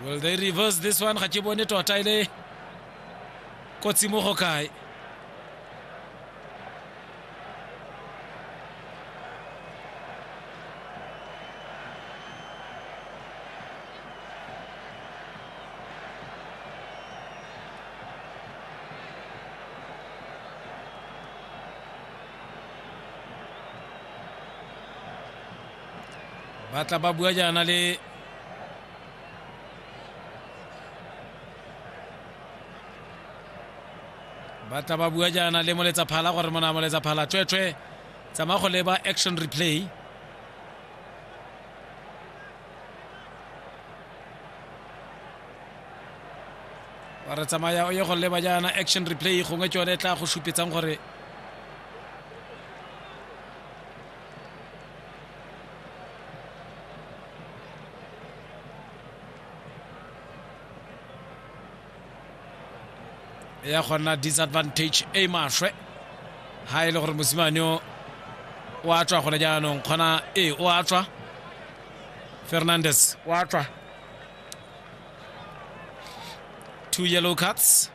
will they reverse this one ga ke bone tota e le kotsi mo go kae ba tla ba bua jaana le ba tla ba bua jaana le moletsa phala gore mona moletsa phala tshwetshwe tsamaya go leba action replay wa re tsamaya o ye go leba jaana action replay gongwe ke yone e tla go supetsang gore ya gonna disadvantage e maswe ha e le gore mosimane o o a tswa gone jaanong kgona ee o a tswa fernandes o a tswa two yellow cards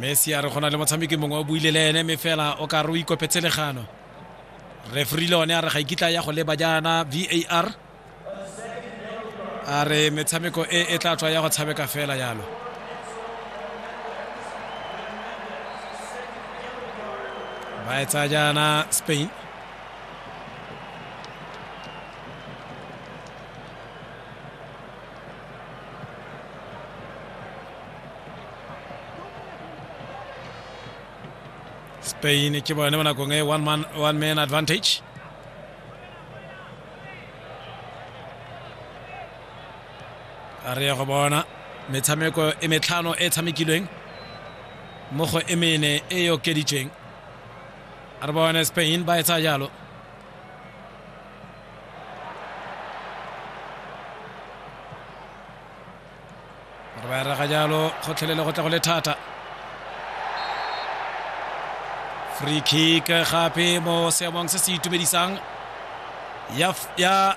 messi a re go na le motshameki mongwe o buile le ene mme fela o ka re o ikopetse legano refri le one a re ga ikitla ya go leba jaana var a re metshameko e e tla tswa ya go tshameka fela jalo ba e tsaya jaana spain Spain e ke bone mo nakong e one man, one man advantage a re ya go bona metshameko e metlhano e tshamekilweng mo go e mene e e okeditsweng a re bone spain ba e tsaya jalo gore ba erega jalo kgotlhelele go tla go le thata free kick gape mo seemong se se itumedisang ya